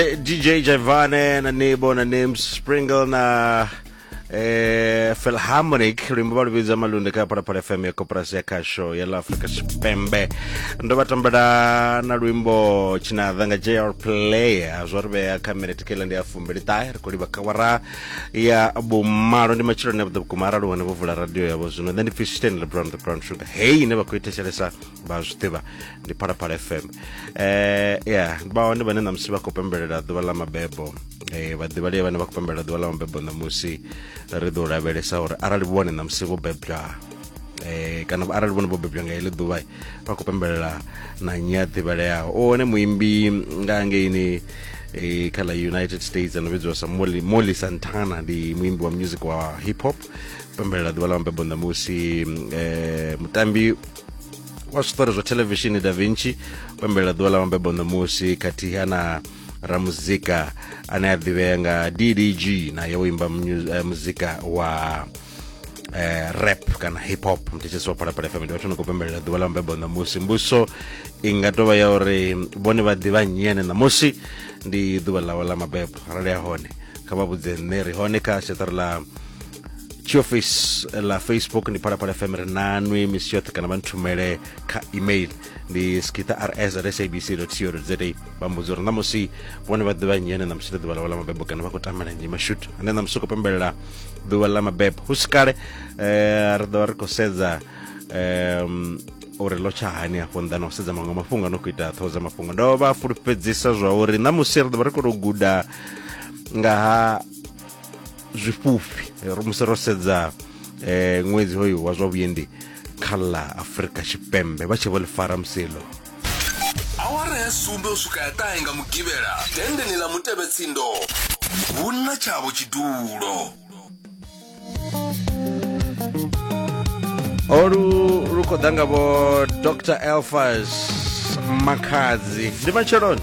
Eh, DJ Javane na Nebo na Names Springle na eh, Philharmonic luimbo vha luvhidza malunde kha phalaphala fm ya koporasi ya khasho ya la afrika tshipembe ndo vha tambela na luimbo tshinadha nga jr player zwo ri vhea kha minete kela ndi ya fumbili ṱahe ri khou livha kawara ya vhumalo ndi matshiloni avhuḓa vhukuma arali hone vho vula radio yavho zwino nṋe ndi pfi stan lebron the brown sugar hei ine vha khou i thetshelesa vha zwi ḓivha ndi phalaphala fm eh ya vha hone vhane ṋamusi vha khou pembelela ḓuvha ḽa mabebo eh vhaḓivhalei vhane vha khou pembelela ḓuvha ḽa mabebo ṋamusi ri ḓo lavhelesa uri arali vhone ṋamusi vho bebwa eh kana arali vhone vho bebwa nga heḽi ḓuvha vha khou pembelela na nnyi a ḓivhaleaho o hone muimbi nga ngeini eh kha ḽa united states ano vhidziwa sa molly, molly santana ndi muimbi wa music wa hip hop pembelela ḓuvha ḽa mabebo ṋamusi eh mutambi wa zwiṱori zwa thelevishini da vinci o ḓuvha ḓuvha ḽa mabebo ṋamusi khathiha na ramuzika ane a ḓivhea nga ddg naye o imba eh, muzika wa eh, rap kana hip hop mthetshetsi wa phalaphala fm ndi vhathu ni khou pembelela ḓuvha ḽa mabebo ṋamusi mbuso i nga tovha ya uri vhone vha ḓivha nnyi ene ṋamusi ndi ḓuvha ḽawe ḽa mabebo arali ya hone kha vha vhudze nṋe ri hone kha seṱari ḽa tshi office ḽa facebook ndi phalaphala fm ri nanwi misi yoṱhe kana vha nthumele kha email ndi skita rs at sabc co za vha mbudza uri ṋamusi vhone vha ḓivha nnyi ane ṋamusi ḽa ḓuvha ḽawe ḽa mabebo kana vha khou tamela nnyi mashut ane ṋamusi u khou pembelela ḓuvha ḽa mabebo hu si kale eh, ri ḓovha ri khou sedza um uri lo tsha hani afho nnḓa na u sedza maṅwe mafhungo ano khou ita ṱhoho dza mafhungo ndo vha fulufhedzisa zwa uri ṋamusi ri ḓo vha ri khou tou guda nga ha zwifhufhi eh, ro musi ro sedza eh ṅwedzi hoyu wa zwa vhuendi kha ḽa afurika tshipembe vha tshi vho ḽi fara musilo awara ya sumbe u swika ya ṱahe nga mugivhela denndeni ḽa mutevhetsindo hu na tshavho tshidulo olu lu khou ḓa nga vho dr elfas makhadzi ndi matsheloni